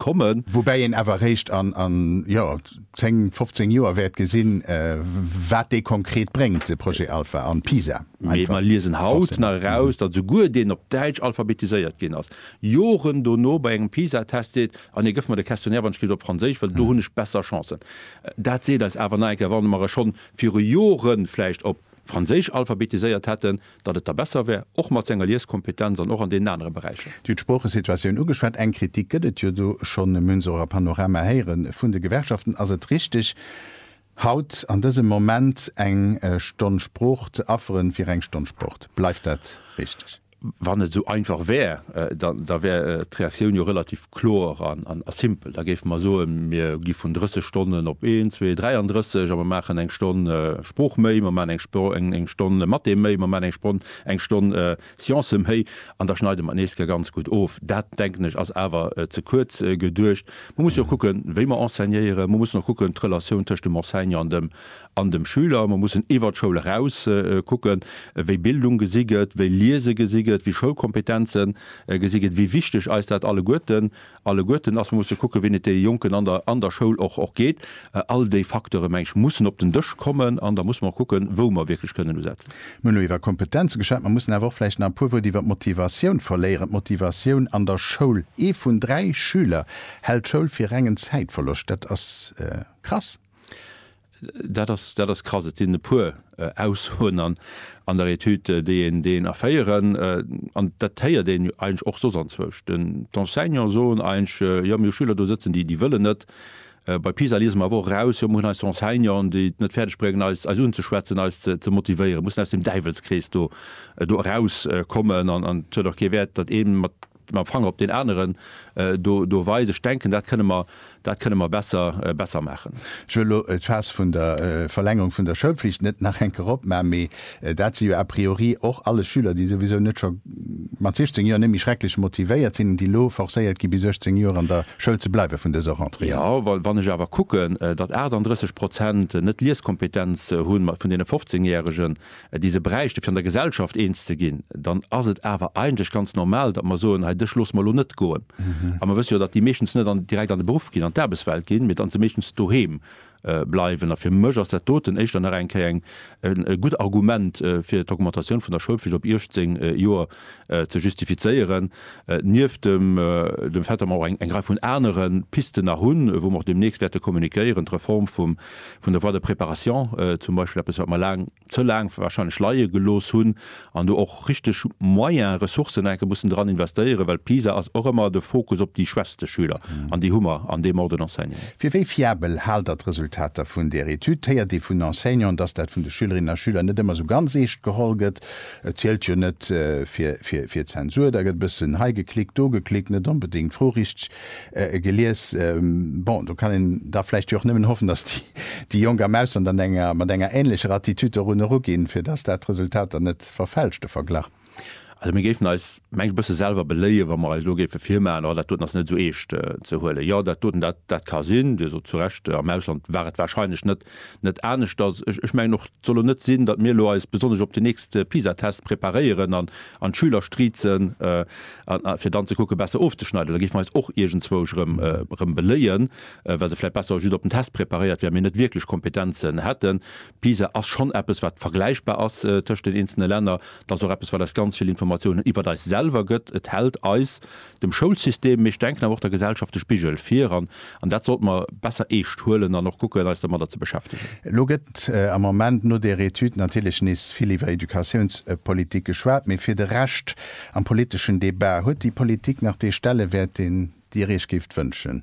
kommen. Woubäi een awer eréischt an, jo, 10, 15 Joer wäert gesinn, wat dee konkret bréngt, de Projet Alpha an Pisa. Mee mer liesen haut nach eraus, datt esouguer deen op Däitsch alphabetiséiert ginn ass, Joren dono bei engem Pisa-Test seet, Ah nee, gëff mer de Questionnaire, wann ech kritt, op Franséisch, well do hunn ech besser Chancen. Dat seet eis awer nach eng Kéier, Wa mer e schonn viru Joren vläicht op Franséisch alphabetiséiert hätten, datt et da besser wär, och mat senger Lieskompetenz an och an deenen anere Beräicher. Dir hutt d'Sproochesituatioun ugeschwat. Eng Kritik gëtt et jo do schonn, mir hunn se och a Panorama héiere vun de Gewerkschaften. Ass et richteg, haut an dësem Moment eng Stonn Sprooch ze afferen fir eng Stonn Sport? Bleift dat richteg? Wann et esou einfach wär, da wär d'Reaktioun jo relativ. kloer an a simpel. Da géife mer soen, mir gi vun 30 Stonnen op een, zwee, 33 a mer maachen eng Stonn Sprooch méi, mer maachen eng eng Stonn Mathé méi, mer maachen eng Spronn eng Stonn Sciencë méi an da schneide mer et nees ga ganz gutt of. Dat, denken ech, ass awer ze kuerz geduecht. Mer mussen och kucken, wéi mer enseignéieren. Mer mussen och kucken, d'Relatioun tëscht dem Enseignant an dem an dem Schüler, mer mussen iwwert d'Schoul eraus kucken, wéi Bildung gesi gëtt, wéi Liese gesi gëtt, wéi Schoulkompetenze gesi gëtt, wéi wichteg eis dat alleguerten, alleguerten ass. Mer musse kucken, wéi et de Jonken an der, an der Schoul och, och geet. All déi Facteure, meng ech, mussen op den Dësch kommen an da musse mer och kucken, wou mer wierklech kënnen usetzen. Mir hunn elo iwwer Kompetenze geschwat, mer mussen awer och vläicht nach e puer Wuert iwwert d'Motivatioun verléieren, d'Motivatioun an der Schoul. Ee vun dräi Schüler hält d'Schoul fir rengen Zäitverloscht. Dat ass krass. Dat ass, dat ass krass. Et sinn e puer Aussoen an, an der Etüd, déi een, déi een erféieren. An dat héiert een jo eigentlech och soss anzwousch. Den, d'Enseignanten soen eigentlech, jo mir hu Schüler do sëtzen, déi, déi wëllen net. Bei PISA liese mer awer och eraus, jo mir hunn eis Enseignanten, déi et net fäerdeg bréngen eis, eis unzeschwätzen, eis ze, ze motivéieren. Mussen aus dem Däiwelskrees do, do erauskommen. An, an et huet och kee Wäert, datt ee mat, mam Fanger op deen aneren do do weisen. Ech denken, dat kënnen mer, dat kënnen mer besser, besser maachen. Ech wëll elo d'Faass vun der Verlängerung vun der Schoulpflicht net nach eng Kéier opmachen, mee dat si jo a priori och alles Schüler, déi souwisou net scho mat 16 Joer net méi schrecklech motivéiert sinn an déi elo forcéiert gi bis 18 Joer an der Schoul ze bleiwen vun dëser Rentrée un. Jo, well wann ech awer kucken, datt 38 Prozent net Lieskompetenz hunn vun deene 15 Järegen, déi se bräichte fir an der Gesellschaft eens ze ginn, dann ass et awer eigentlech ganz normal, datt mer soen, hei dech loosse mer elo net goen. A mer wësse jo, datt déi meeschtens net an direkt an de Beruff ginn, an d'Aarbechtswelt ginn, mee datt se meeschtens doheem bleiwen. A fir mech ass dat doten éischter nach eng Kéier e gutt Argument fir d'Augmentatioun vun der Schoulpflicht op 18 Joer. ze justifizéieren, nieft dem Fait, datt mer och eng Rei vun anere Pisten nach hunn, wou mer och deemnächst wäerte kommuniquéieren, d'Reform vun der Voie de préparation zum Beispill, eppes wat mer laang, ze laang wahrscheinlech leie gelooss hunn an do och richteg Moyen, Ressourcen nach eng Kéier mussen dran investéieren, well PISA ass och ëmmer de Fokus op déi schwächste Schüler an déi hu mer an deem Ordre d'enseignement. Fir wéi fiabel haalt Der d'Resultater vun där Etüd? Héiert ee vun Enseignanten, datt dat vun de Schülerinnen a Schüler net ëmmer esou ganz eescht geholl gëtt? Et zielt jo net fir Zensur, da gëtt e bëssen hei geklickt, do geklickt, net onbedéngt d'Fro richteg gelies. Bon, do kann een da vläicht jo och nëmmen hoffen, datt déi Jonk am Ausland an enger, mat enger änlecher Attitude dorun eruginn, fir datt dat Resultat dann net verfälscht, de Verglach. Also mir géifen eis, mengen ech, e bësse selwer beléien, wa mer eis elo géife virmaachen, oh dat doten ass net esou eescht ze huelen. Jo, dat doten, dat ka sinn, Dir sot zu Recht, am Ausland war et warscheinlech net net anescht ass. Ech mengen och, et soll elo net sinn, datt mir elo eis besonnesch op de nächste PISA-Test preparéieren an an d'Schüler striezen, fir dann ze kucken, besser ofzeschneiden. Da géife mer eis och iergendzwousch erëm beléien, well se vläicht besser just op den Test preparéiert wären, mee net wierklech Kompetenzen hätten. PISA ass schonn eppes, wat vergläichbar ass tëscht den eenzele Länner. Et ass och eppes, wat eis ganz vill Informatiounen iwwer eis selwer gëtt. Et hält eis Dem Schoulsystem, mee ech denken awer och der Gesellschaft, de Spigel vir, an an dat sollte mer besser eescht huelen an och kucken, eis dermadder ze beschäftegen. Elo gëtt am Moment no där Etüd natierlech nees vill iwwer Educatiounspolitik geschwat, mee fir de Rescht am politeschen Debat, huet déi Politik nach dee Stellewäert, deen Dir Iech géift wënschen?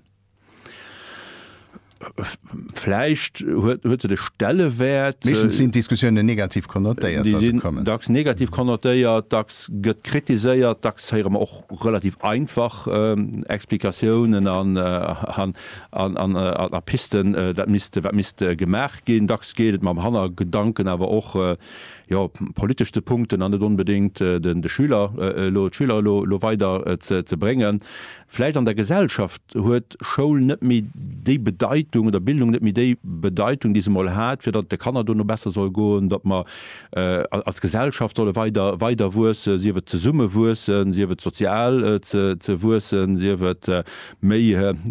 Vläicht huet huet se de Stellewäert. Meeschtens sinn d'Diskussiounen negativ konnotéiert, wa se kommen. Dacks negativ konnotéiert, dacks gëtt kritiséiert, dacks héiere mer och relativ einfach Explikatiounen an an a Pisten, dat misst wat misst gemaach ginn. Dacks geet et mam Hannergedanken awer och, jo, politesch ze punkten an net onbedéngt de Schüler elo d'Schüler elo elo weider ze bréngen. Vläicht an der Gesellschaft huet Schoul net méi déi Bedeitung, oder Bildung net méi déi Bedeitung, déi se emol hat, fir datt et de Kanner dono besser soll goen, datt mer als Gesellschaft solle weider weider wuessen, sief et zesumme wuessen, sief et sozial ze wuessen, sief et méi.